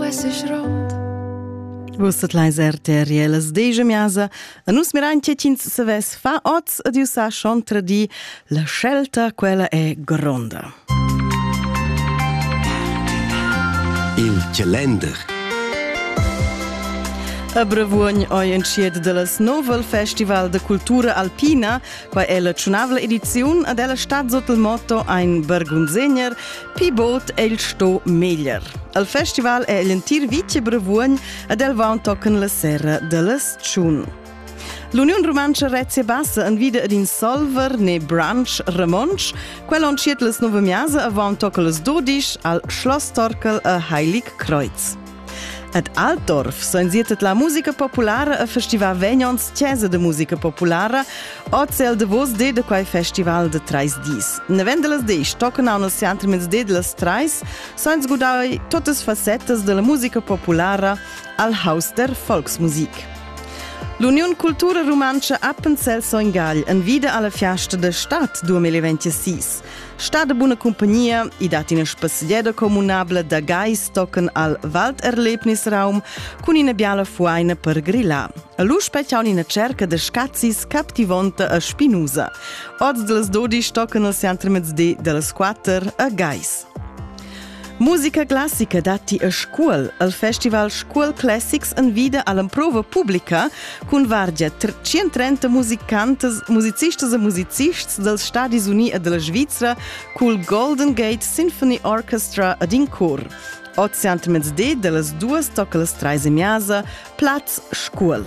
uesses rond. Vus tot leis RTRLs deja miasa, a nus miran che tins saves fa oz ad iusa shontra di, la scelta quella è gronda. Il calender A Bravuogn oi entschiet de las Novel Festival de Cultura Alpina, qua è la tschunavla ediziun ad ella stat sot il motto Ein Bergunsegner, Pi bod è il sto meglier. Al festival è l'entir Vice Brevuogn ed el va tochen la serra dallas Tschun. L'Uniun Rumantscha Rezia Bassa envida ed in Solver ne Branch Ramonsch. Quel entschiet las nove miasa avant tochen las 12 al Schloss Torkel a Heilig Kreuz. Ed Altdorf soinzietet la musica populara e festival vegnons chesa de musica populara oz el davos de de quei festival de treis dis. Nevendelas disch tocan aunc el centre mins de las treis soins gudai totas facetas della musica populara al haus der Volksmusik. L'Union Cultura Rumantscha Appenzell Soingagl envida alla fiasta de stad 2026. Sta de buna compagnia, i dat ina spasdieda comunabla da gais tochen al Walderlebnisraum cun ina biala fuaina per grillar. Lu spetgiaun ina cerca de scazis captivonta a Spinusa. Oz de las 12 tochen al centre mezdi de las 4 a Gais. Musica classica datti a Scuol, al festival Scuol Classics en vita all'improva pubblica cun vargia 130 musicantas, musicistas e musicists dels Stadis Uni e della Svizzera col Golden Gate Symphony Orchestra ed in cor. Oziant mezde de las duas tocca las trais e miasa, plaz Scuol.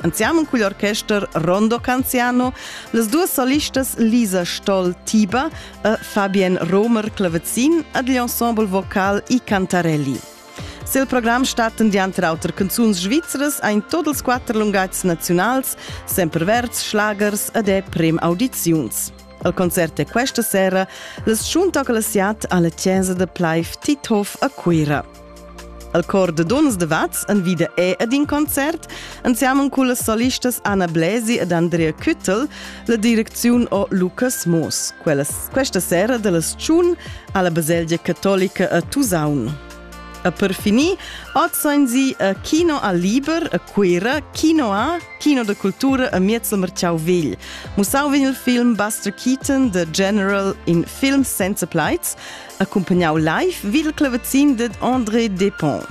Anziamo cugl orchester Rondo Canziano, las duas solistas Lisa Stoll Tiba e Fabian Romer Clavezzin ad l'ensemble vocal i Cantarelli. Sil program statten dianter auter canzuns svizras ein tot ils quatter lungatgs naziunals, semper verds, schlagers ed è prem audiziuns. El concert è questa sera las Schuntoclasiat alla Chiesa de Pleif Tithof a Cuira. Al cor da duns de Vaz envida è ed in concert insiamen cun las solistas Anna Bläsi ed Andrea Küttel, la direcziun o Lukas Moos. Quellas, questa sera dellas Tschun alla Baselgia Cattolica a Tusaun. E per finir, oz sono sie a Kino al Liber a Cuira, Kino A, Kino de Cultura a Miezzel Marciau Vigl. Musau vegn il film Buster Keaton, The General in Film Senza Plaits, accumpagnau live vid il clavazin ded André Depont.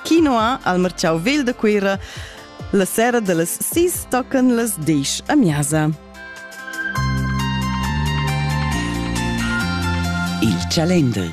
Kino A al Marciau Vegl da Cuira la sera dallas sis tocan las disch a Miasa. Il Chalender